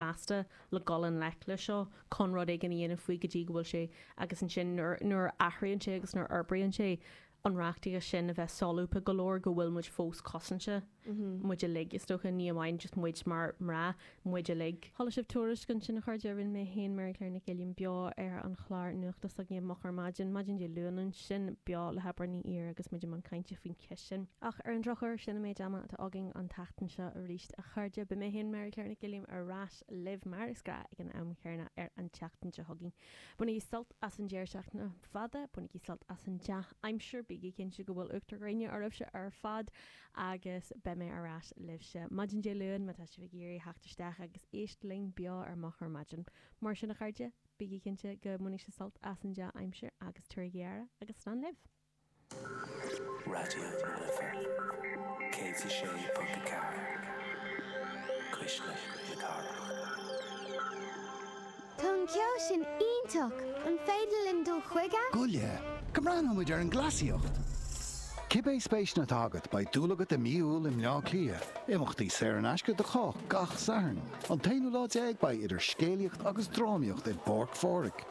measctha le dul in ngleic leis seo chun rud éigin a dhéanamh faoi go dtí go bhfuil sé agus ansin nuair nuair a athraíonn sé agus nuair a fhorbraíonn sé an reachtaíocht sin a bheith solúbtha go leor go bhfuil muid fós cosanta muid uilig is dócha ní amháin muid mar mná muid uilig. Chuala sibh tuairisc ansin a chairde, rinne mé féin Mary Claire Nic Uilliam beo ar an chlár nuachta s'againn i moch ar maidin, maidin Dé Luain ansin, beo le hÉimear Ní Ír agus muid i mbun cainte faoin cheist sin. Ach ar an drochuair sin an méid ama atá fágtha againn an tseachtain seo arís. A chairde, beidh mé féin Mary Claire Nic Uilliam ar ais libh mar is gnáth ag an am chéanna ar an tseachtain seo chugainn. Bainigí sult as an deireadh seachtaine fada, bainigí sult as an dea-aimsir, bígí cinnte go bhfuil uachtar gréine oraibhse ar fad agus beidh mé ar ais libhse maidin Dé Luain má tá sibh ag iarraidh theacht isteach agus éisteacht linn beo ar moch ar maidin. Mar sin a chairde, bígí cinnte go mbainfidh sibh sult as an dea-aimsir agus tabharaigí aire agus slán libh. Raidió na Life 106.4 Cuisle na Cathrach. Tá an ceol sin iontach! An féidir linn dul chuige? Gabh i leith, go mbreathnóidh muid ar an gcleasaíocht! Cibé spéiseanna atá agat, beidh dúil agat i mí Iúil i mBleá Cliath. Imeachtaí saor in aisce do chách gach Satharn. An t-aonú lá déag beidh idir scéalaíocht agus drámaíocht i bPáirc Phádraig.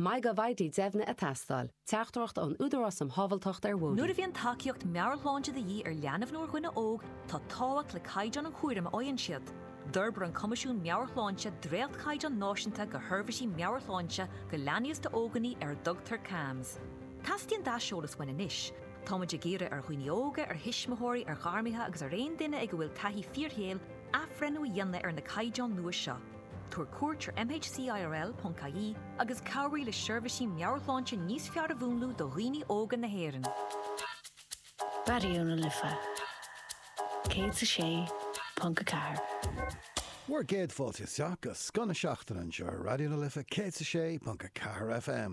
Maith go bhfaighidh deimhniú ag teastáil. Teachtaireacht ón Údarás um Shábhalteacht ar Bhóithre. Nuair a bhíonn tacaíocht meabhairshláinte de dhíth ar leanbh nó ar dhuine óg, tá tábhacht le caighdeán an chúraim a fhaigheann siad. D'fhorbair an Coimisiún Meabhair-Shláinte dréachtchaighdeáin náisiúnta do sheirbhísí meabhairshláinte do leanaí is d'óganaí ar a dtugtar CAMHS. Teastaíonn d'aiseolas uainn anois. Táimid ag iarraidh ar dhaoine óga, ar thuismitheoirí, ar ghairmithe agus ar aon duine ag a bhfuil taithí fíorshaoil athbhreithniú a dhéanamh ar na caighdeáin nua seo. Tabhair cuairt ar mhcirl.ie agus cabhraigh le seirbhísí meabhairshláinte níos fearr a mhúnlú do dhaoine óga na hÉireann. Raidió na Life 106.4. Bhur gcéad fáilte isteach chuig scoth na seachtaine anseo ar Raidió na Life 106.4 FM.